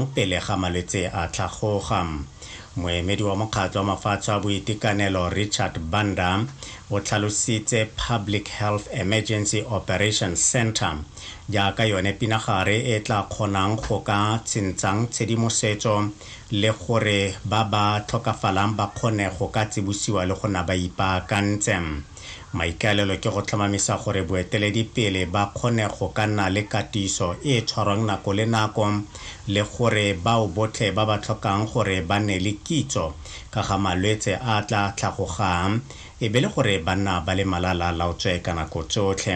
pele ga malwetse a tlhagoga. Moemedi wa Mokgatlho wa Mafatshe wa Boitekanelo Richard Banda o tlhalositse Public Health Emergency Operations Centre jaaka yone pinagare e tla kgonang go ka tshintshang tshedimosetso le gore ba ba tlhokafalang ba kgone go ka tsibusiwa le go na ba ipaakantse. Maikaelelo ke go tlhomamisa gore boeteledipele ba kgone go ka nna le katiso e e tshwarwang nako le nako le gore bao botlhe ba ba tlhokang gore ba nne le kitso ka ga malwetse a a tla tlhagogang e be le gore ba nna ba le malala-a-laotswe ka nako tsotlhe.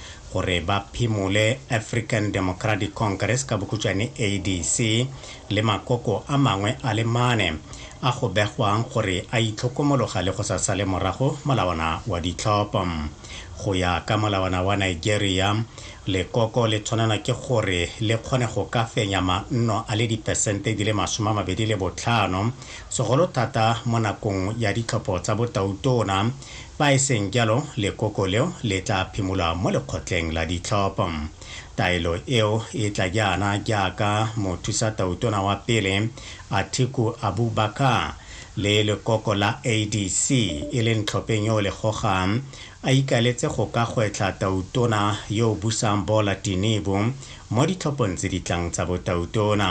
gore ba phimole African Democratic Congress, ka bokhutšwane ADC, le makoko a mangwe a le mane a go begwang gore a itlhokomologa le go sa sale morago molawana wa ditlhopho. Go ya ka molawana wa Nigeria, lekoko le tshwanelwa ke gore le kgone go ka fenya manno a le dipesente di le masome a mabedi le botlhano, segolo thata mo nakong ya ditlhopho tsa botautona, Fa e seng jalo, lekoko leo le tla phimolwa mo lekgotleng la ditlhopho. Taelo eo e tla jaana jaaka mothusatautona wa pele, Atiku Abubakar, le lekoko la ADC, e leng tlhopheng yo o le gogang, a ikaeletse go ka gwetlha tautona yo o busang Bola Tinubu mo ditlhophong tse di tlang tsa botautona.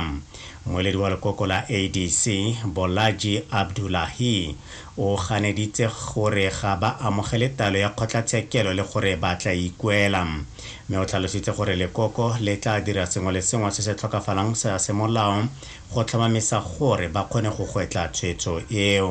Mmueledi wa lekoko la ADC, Bolaji Abdullahi, O ganeditse gore ga ba amogele taelo ya kgotlatshekelo le gore ba tla ikuela. Mme o tlhalositse gore lekoko le tla dira sengwe le sengwe se se tlhokafalang sa semolao go tlhomamisa gore ba kgone go gwetla tshwetso eo.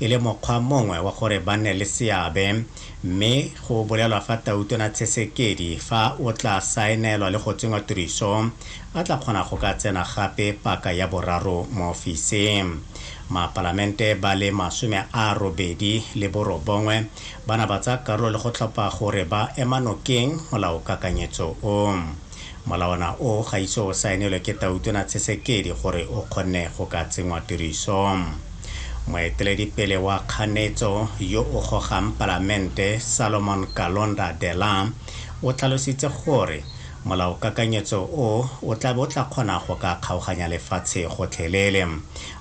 e le mokgwa mongwe wa gore ba nne le seabe mme go bolelwa fa Tautona Tshesekedi fa o tla saenelwa le go tsenngwa tiriso a tla kgona go ka tsena gape paka ya boraro mo ofising. Mapalamente ba le masome a robedi le borobongwe ba na ba tsaya karolo le go tlhopha gore ba ema nokeng molaokakanyetso o. Molawana o ga ise o saenelwe ke Tautona Tshisekedi gore o kgonne go ka tsenngwa tirisong. Moeteledipele wa kganetso yo o gogang Palamente, Salomon Kalonda Dela, o tlhalositse gore molaokakanyetso o o tlabe o tla kgona go ka kgaoganya lefatshe gotlhelele.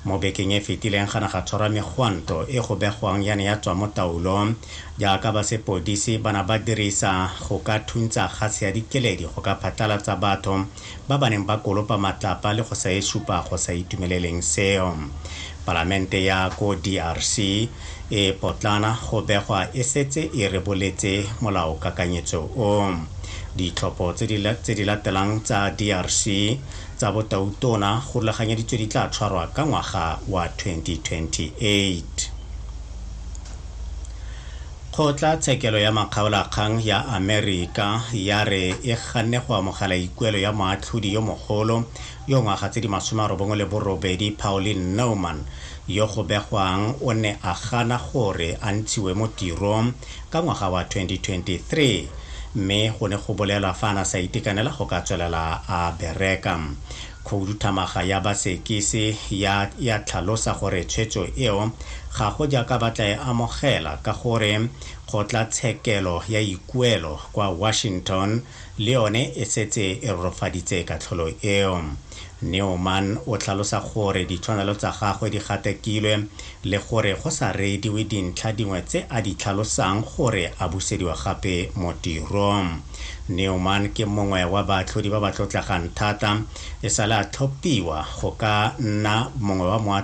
Mo bekeng e fetileng ga ne ga tshwarwa megwanto e go begwang ya ne ya tswa mo taolong jaaka ba sepodisi ba na ba dirisa go ka thuntsa gase ya dikeledi go ka phatlalatsa batho ba ba neng ba kolopa matlapa le go sa e supa go sa itumeleleng seo. Palamente ya ko DRC e potlana go begwa e setse e reboletse molaokakanyetso o. Ditlhopho tse di latelang tsa DRC tsa botautona go rulaganyeditswe di tla tshwarwa ka ngwaga wa 2028. Kgotla tshekelo ya makgaolakgang ya Amerika ya re e ganne go amogela ikuelo ya moatlhodi yo mogolo yo ngwaga tse di masome a robongwe le borobedi Pauline Naumann yo go begwang o ne a gana gore a ntshiwe mo tirong ka ngwaga wa 2023 mme go ne go bolelwa fa a na sa itekanela go ka tswelela a bereka. Khouduthamaga ya Basekise ya ya tlhalosa gore tshwetso eo ga go jaaka ba tla e amogela ka gore kgotlatshekelo ya ikuelo kwa Washington le yone e setse e rorofaditse katlholo eo. Newman o tlhalosa gore ditshwanelo tsa gagwe di gatakilwe le gore go sa reediwe dintlha dingwe tse a di tlhalosang gore a busediwa gape mo tirong. Newman ke mongwe wa baatlhodi ba ba tlotlegang thata. E sale a tlhophiwa go ka nna mongwe wa moatlhodi